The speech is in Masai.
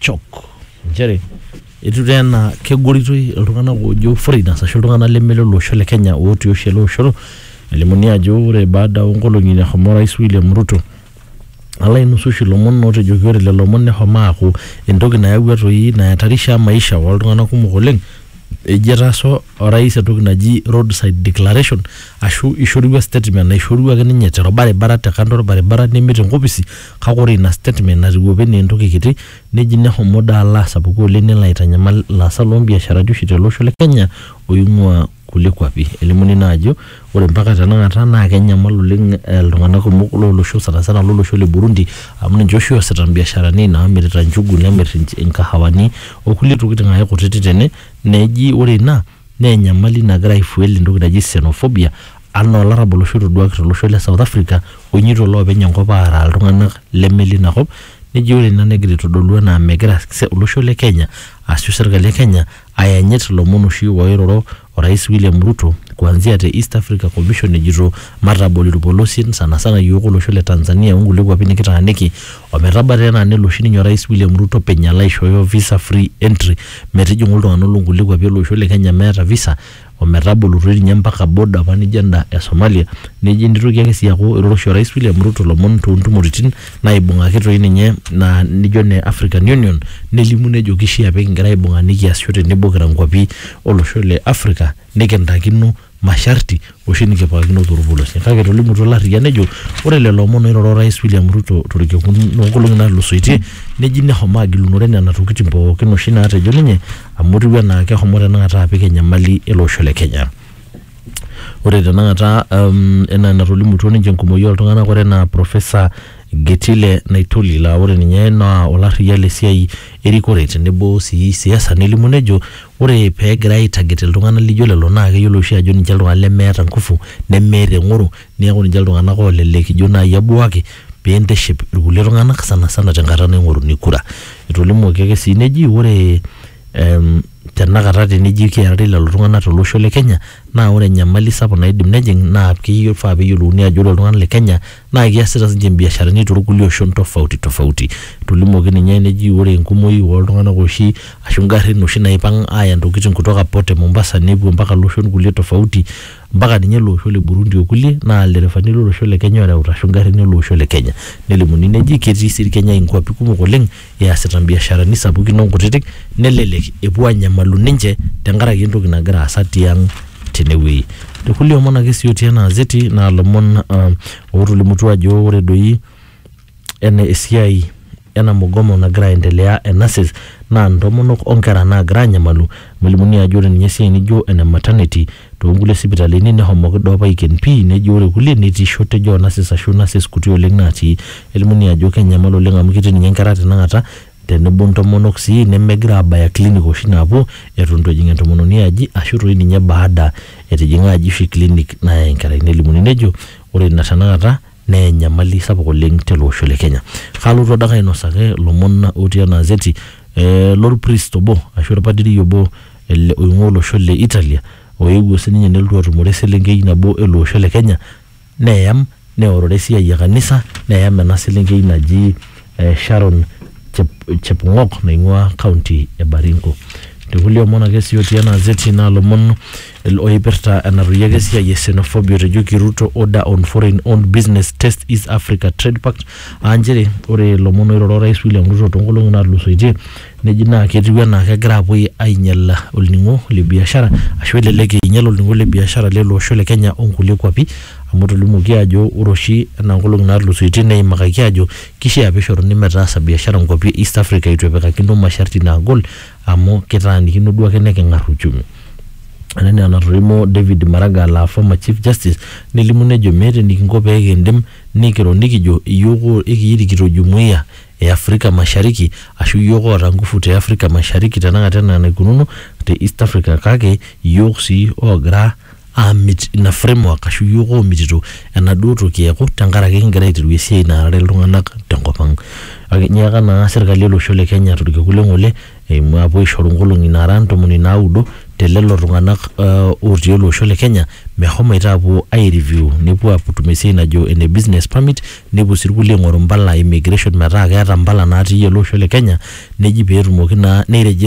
chok nchere etiu taa enaa kegoritoi iltung'anak oojo foreigners ashu iltung'anak leme lolosho le Kenya ootii oshi ele osho elimuni ajo ore baada oonkolong'i nashomo orais William Ruto alo ainusu oshi ilomon ootejoki ore lelo omon neshomo aaku entoki nayawua toi nayatarisha maisha ooltung'anak kumok oleng eji etaasa orais entoki naji roadside declaration ashu ishorua statement naishorua ake ninye torbaribara te kando orbaribara neme tenkopisi Kake ore ina statement natiu opa enaa entoki kiti neji nehomo daa alo asapuku oleng nelo aitanyamal ilaasak loo mbiasharani oshi tele osho le Kenya oing'uaa kulie kwapi. Elimuni naa ajo ore mpaka tenakata naa kenyamal oleng iltung'anak kumok loo losho sana sana lo losho le Burundi amu ninche oshi oosita mbiasharani naamirita njugu, nemirr inkahawani o kulie tokitin ake kutiti tene neji ore ina Naa enyamali nagira aifuel entoki naji Xenophobia anaa olarrabal oshi otoduaki tolosho le South Africa oinyoito iloopeny enkop aaraa iltung'anak leme leina kop neji ore ina negira aitodolu enaa megira olosho le Kenya ashu serkali e Kenya ayanyit ilomon oshi ooiroro orais William Ruto kuanzia te East Africa Commission ejito matabol irpolosien sana sana iyiook olosho le Tanzania onkulie kuapi nikitaaniki Ometaba taa enaa nelo oshi ninye Orais William Ruto openy alo aishooyo visa free entry metijing'u iltung'ana loo nkulie kuapi ele osho le Kenya meeta visa ometabolutua ninye mpaka border apa nijo enda e Somalia neji nitoki ake sii aaku eiroro oshi Orais William Ruto ilomon too ntumoritin naibung'aki toi ninye naa nijo ine African Union nelimu nejo kishia pee kigira aibung'a nikiasisho tenebo kira nkuapi olosho le Africa nikintakino masharti oshi nikipikakino torpolosie. Kake etolimutuo Larriyia nejo ore lelo omon oiroro Orais William Ruto torkekun loonkolongi natulusoitie neji neshomo agilunore nena tokitin pooki oshi naatejo ninye amu etiu enaa keshomo tenakata apik enyamali ele osho le Kenya. Ore tenakata enaa enatolimutuo ninche enkumoi oltunganak ore enaa Professor Getile Naitoli laa ore ninye naa olarriyia le siai erikore tenebo sii siasa nelimu nejo ore pee egirai aitaget iltung'anak lijo lelo naa keyiolo oshi ajo ninche iltung'anak lemeeta ngufu nemeeta eng'oro neeku ninche iltung'anak oolelek ijo naai ebuaki pee intiship irkulie tung'anak sana sana tenkata naing'oruni kura. Etolimuoki ake sii neji ore em tenakata teneji keari lelo tung'anak tolosho le Kenya naa ore enyamali sapuk naidim nejing' naa kifaa peeyiolouni ajo ore iltung'anak le Kenya naa kiasita sinche ibiasharani torkulie oshon tofauti tofauti. Etolimuoki ninye neji ore enkumoi oltunganak oshi ashu garin oshi naipang aya ntokitin kutoka port e Mombasa nepuo mpaka loshon kulie tofauti mpaka ninye ele osho le Burundi okulie naa ilderefani lolosho le Kenya oreuta ashu garin ele osho le Kenya. Nelimuni neji ketii sii Kenya nkuapi kumok oleng. easita mbiasharani sapukin onkutitik nelelek epuo anyamalu ninche tenkaraki entoki nagira aasa tiang tenewueji tekulie omon ake sii otii ena azeti naa lomon uh, otolimutua ajo ore doi ena esiai ena mugomo nagira aendelea e nurses naa ntomonok onkera naagira anyamalu amu elimuni ajo ore ninye esiai nijo ene maternity Toonkulie sipitalini nehomoki duo apa aiken pii neji ore kulie netii shortage oo nurses ashu nurses kuti oleng naatii. Elimunii ajo kenyamal oleng amu ketii ninye nkera tenakata tenebo ntomonok sii nemegira aabaya clinic oshi naapuo eton eitu ejing entomononi aji ashu toi ninye baada etijing'a aji oshi clinic nayai enkerai. Nelimuni nejo ore ina tenakata naa enyamali sapuk oleng tele osho le Kenya. Kalotu adake ainosaki ilomon otii ena azeti eh, lorpriest obo ashu orpadiri obo ele oing'ua olosho le Italia oewuo sininye nelotu atumore eselenkei nabo ele osho le Kenya neyam neorore esiai e kanisa neyam ena selenkei naji eh, Sharon Chep- Chepng'ok naing'ua county e Baringo. Te kulie omon ake sii otii ena azeti naa ilomon Oipirta enatoyieki esiai e xenophobia otejoki Ruto order on foreign owned business test East Africa Trade Pact aa nchere ore ilomon oiroro Orais William Ruto toonkolong'i naatulusoitie neji naa ketiu enaa kegira apuo ainyal olning'o le biashara ashu elelek einyal olning'o le biashara lele osho le Kenya onkulie kuapi amu etolimuoki aajo ore oshi enaa nkolong'i naatulusoitie neimakaki aajo kishaa pishoruni metaasa biashara nkuapi e East Africa eitu epikakino masharti naagol amu kitaanikino duo ake neking'ar uchumi. Ore enaa enatolimwo David Maraga laa former Chief Justice nelimu nejo meeta enikinko pee kindim nikiro nikijo iyiook o ekiya irikito Jumuia e Afrika Mashariki ashu iyiook oota ngufu te Afrika Mashariki tenakata enaa enaikununo te East Afrika kake iyiook sii oogira aamit ina framework ashu iyiook oomitito enaduo toki eeku tenkaraki kigira aiteru esiai naarare iltung'anak tenkop ang. Kake inyiaka naa serkali olosho le Kenya torkekun le ng'ole eimu apuo aishoru nkolong'i naara ntomoni naudo te lelo tung'anak ootii ele osho le Kenya meshomoita aapuo ai review nepuo aatum esiai najo ene business permit nepuo sii irkulie aing'oru impala e immigration metaa keeta impala natii ele osho le Kenya neji peetumoki naa nei register